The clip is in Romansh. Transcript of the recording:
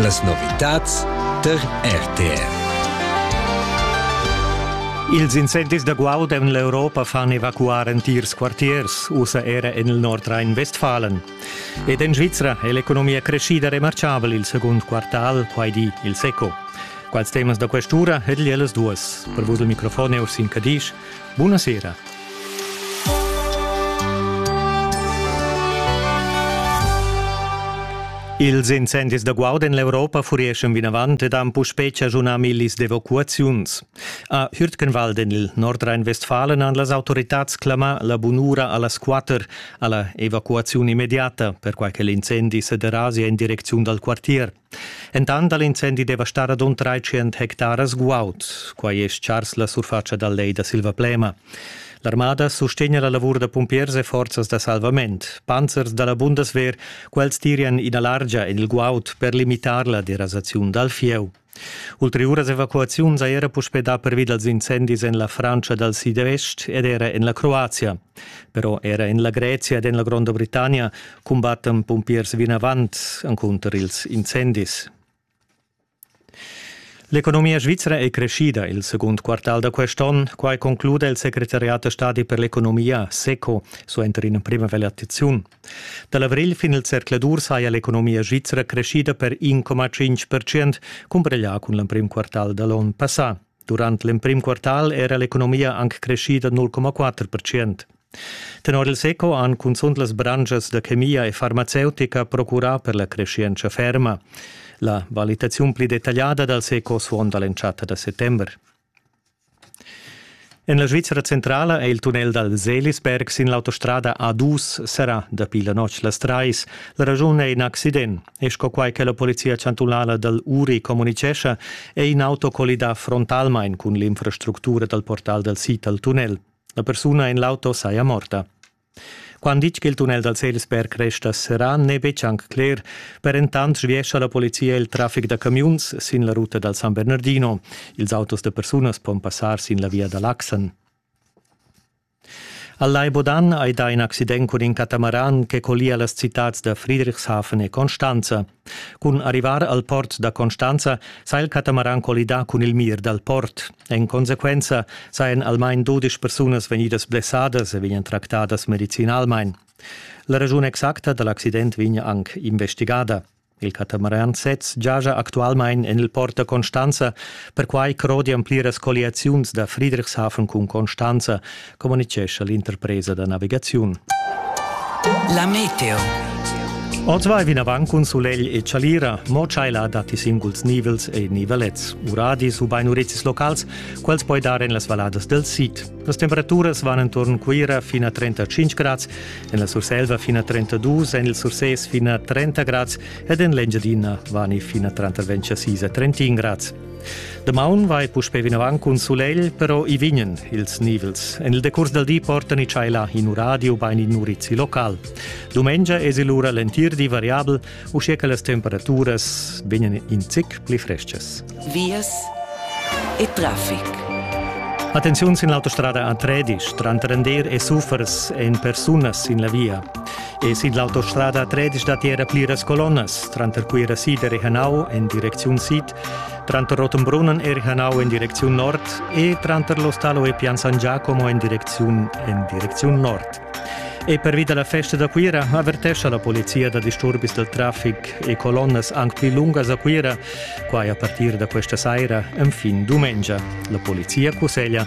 Las novitads tar RTR. Ils incendis da guaud en l'Europa fan evacuar entirs quartiers, ussa era en il Nordrhein-Westfalen. Ed en Svizra è l'economia creschida remarchabel il segund quartal, quai di il SECO. Quals temas da quest'ura ed ellas duas. Per vus il microfon è Ursin Cadisch. Bunasera. Ils incendis da guarda en l'Europa furieschan vinavant ed han puspè chaschunà millis d'evacuaziuns. A Hürtgenwald en il Nordrhein-Westfalen han las autoritads clamà la bunura a las quatter a la evacuaziun immediata, perquai che l'incendi sa derasa en direcziun dal quartier. Entant ha l'incendi devastà radund 300 hectaras guaud. Quai è stgars la surfatscha dal lej da Silvaplema. L'armada sustegna la lavur da pumpiers e forzas da salvament. Panzers da la Bundeswehr, quels tirian ina largia en il guaud per limitar la derasaziun dal fieu. Ulteriuras evacuaziuns ha era puspè dà pervi dals incendis en la Frantscha dal sidvest ed era en la Croazia. Però era en la Grezia ed en la Gronda Britannia cumbattan pumpiers vinavant encunter ils incendis. L'economia svizra è crescida il secund quartal da quest'onn, quai conclude il secretariat da stadi per l'economia, SECO, suenter ina primavallaziun. Da l'avrigl fin il zercladur saja l'economia svizra crescida per 1,5%, cumpareglià cun l'emprim quartal da l'onn passà. Durant l'emprim quartal era l'economia anc crescida 0,4%. Tenor il SECO han cunzunt las branschas da chemia e farmaceutica procurà per la creschientscha ferma. La valitaziun pli detagliada dal SECO suonda l'entschatta da settember. En la Svizra centrala è il tunnel dal Selisberg sin l'autostrada A2 serrà dapi la notg las trais. La raschun è in accident. E sco quai che la polizia chantunala dal Uri communitgescha, è in auto collidà frontalmain cun l'infrastructura dal portal dal sid al tunnel. La persuna en l'auto saja morta. Quando ditg che il tunnel dal Salisberg resta serrà n'è betg anc cler. Per entant sviescha la polizia il traffic da camiuns sin la ruta dal San Bernardino. Ils autos da persunas pon passar sin la via da Laxen. Al Lai Bodan hai dà in accident cun in catamaran che collia las citads da Friedrichshafen e Constanza. Cun arrivar al port da Constanza s'ha il catamaran collidà cun il mir dal port. En consequenza sajan almain dudesch persunas vegnidas blessadas e vegnan tractadas medicinalmain. La raschun exacta da l'accident vegn anc investigada. Il catamaran sez giaja actualmain en il port da Constanza, perquai crodian pliras colliaziuns da Friedrichshafen cun Constanza, communicescha l'interpresa da navigaziun. La meteo. Oz vai vinavant cun sulegl e chalira, mo tschaila datti singuls nivels e nivelets, uradis ubain urezis locals, quels poi dar en las valadas del sid. Las temperaturas van entorn Cuira fin a 35 grads, en la Surselva fin a 32, en il Sursès fin a 30 grads ed en l'Engiadina vani fin a 36 a 31 grads. Damaun vai puspè vinavant cun sulegl, però i vignan ils nivels. En il decurs dal di portan i tschaila in radio bain in urizi local. Dumengia es lura l'entir di variabel, uschia che las temperaturas vegnan in zic pli frestgas. Vias e traffic. Attenziun sin l'autostrada a Tredisch, tranter Ender e Suffers en persunas sin la via. E sin l'autostrada a Tredisch datti era pliras colonnas, tranter Cuira Sider e Hanau en direcziun sid Tranter Rottenbrunnen eri Hanau en direcziun nord e tranter l'Ostalo e Pian San Giacomo en direcziun, en direcziun nord. E pervi dalla festa da Cuira avertescha la polizia da disturbis del traffic e colonnas anc pli lungas a Cuira, quai a partir da questa saira, enfin dumengia. La polizia cusseglia